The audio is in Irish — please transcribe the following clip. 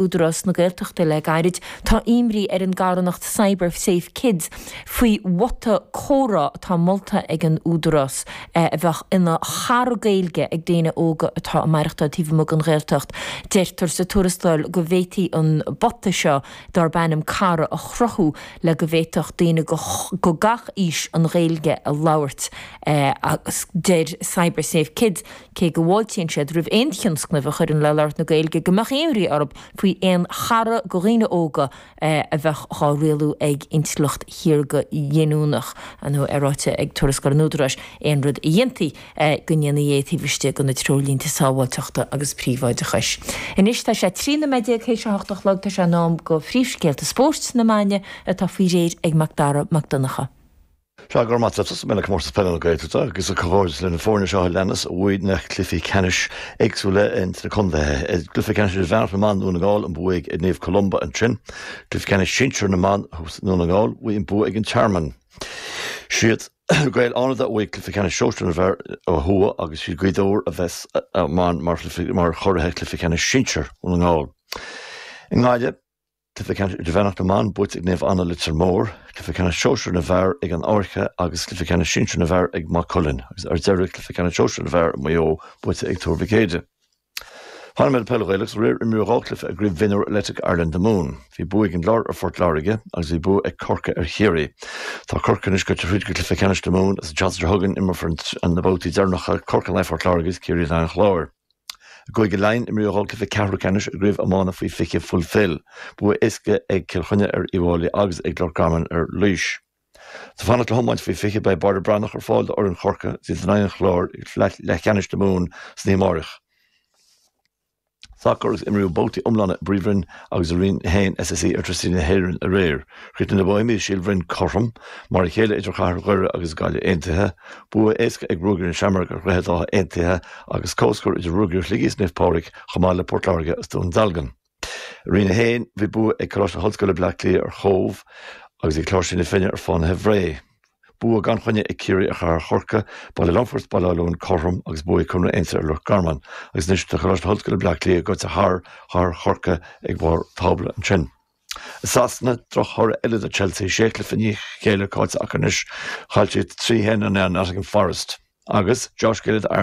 Údarás na Gaeltachta le gairid, tá imní ar an gcarthanacht Cyber Safe Kids faoi bhota comhrá atá molta ag an Údarás a bheadh ina chara Gaeilge ag daoine óga atá ag maireachtáil taobh amuigh den Ghaeltacht. Deirtear sa tuarascáil go bhféadfaí an bota seo darb ainm Cara a chruthú le go bhféadfadh daoine de gach aois an Ghaeilge a labhairt agus deir Cyber Safe Kids, cé go bhfáiltíonn siad roimh aon tionscnamh a chuireann le labhairt na Gaeilge, go mbeadh imní orthu faoi aon chara do dhaoine óga a bheadh á rialú ag intleacht shaorga ghiniúnach, tá sé ráite ag Tuarascáil an Údaráis, aon rud a dhéanfaí, go ndéanfaí é taobh istigh de na treoirlínte sábháilteachta agus príobháideachais. Anois tá sé trí nuiméad déag théis a hocht a chlog, tá sé in am do phríomhscéalta spóirt na maidine, atá faoi réir ag Mac Dara Mac Donncha. Go raibh maith agat tosóidh mé le Comórtas Peile na Gaeltachta agus comhghairdeas leis na foirne seo a leanas a bhuaigh na cluichí ceannais éagsúla ins na contaetha. I gcluiche ceannais idirmheánach na mBan, Dún na nGall, an bua ag Naomh Columba ansin. Cluiche ceannais sinsir na mban thuas i nDún na nGall, bhí an bua ag An Tearmann. Siad Gaeil Fhánada a bhuaigh cluiche ceannais sóisear na bhfear ó thuaidh agus siad Gaoth Dobhair a bheas ann mar churaidh chluiche ceannais sinsir Dhún na nGall. I nGaillimh, Cluiche ceannais idirmheánach na mban buaite ag Naomh Anna, Leitir Móir, cluiche ceannais sóisear na bhfear ag an Fhairche agus cluiche ceannais sinsear na bhfear ag Maigh Cuilinn, agus ar deireadh cluiche ceannais sóisear na bhfear i Maigh Eo buaite ag Tuar Mhic Éadaigh. Fanfaidh mé le peil Ghaelach is aréir, imríodh dhá cluiche i gCraobh Mhionúir Electric Ireland na Mumhan. Bhí bua ag an gClár ar Phort Láirge agus bhí bua ag Corcaigh ar Chiarraí. Tá Corcaigh anois goite thríd go Cluiche Ceannais na Mumhan agus an tseachtain seo chugainn, imreofar na babhtaí deireanacha Corcaigh in aghaidh Phort Láirge agus Ciarraí in aghaidh an Chláir. I gCúige Laighean, imríodh dhá chluiche ceathrú ceannais i gCraobh Iomána Faoi 20 Fulfil. Bua éasca ag Cill Chainnigh ar Uíbh Fhailí agus ag Loch Garman ar Laois. Is ag fanacht le hIomáint Faoi 20, beidh Barra Breathnach ar fáil d'fhoireann Chorcaí in aghaidh an Chláir i gCluiche Leathcheannais na Mumhan san oíche amárach. Sacar agus imríodh babhtaí iomlána i bPríomhroinn agus i Roinn 1 SSE Airtricity na hÉireann aréir. Chríochnaigh na Bohemians is Síol Bhroin cothrom mar a chéile idir chathair Dhoire agus an Gaillimh Aontaithe, bua éasca ag Ruagairí na Seamrog ar Dhroichead Átha Aontaithe agus comhscór idir Ruagairí Shligigh is Naomh Pádraig chomh maith le Port Láirge is Dún Dealgan. I Roinn 1, bhí bua ag Coláiste na hOllscoile Bleá Cliath ar Chóbh agus ag Cláirsigh na Finne ar Fhánaithe Bhré, bua gan choinne ag Ciarraí ar Chathair Chorcaí, Baile Longfoirt is Baile Átha Luain cothrom agus bua ag Conradh Aontaithe ar Loch Garman agus anois tá Coláiste na hOllscoile Bleá Cliath gaite thar Chathair Chorcaí ag barr tábla ansin. I Sasana, drochthoradh eile do Chelsea, sé chluiche i ndiaidh chéile caillte acu anois, chaill siad trí a haon in aghaidh Nottingham Forest agus Josh Gillett a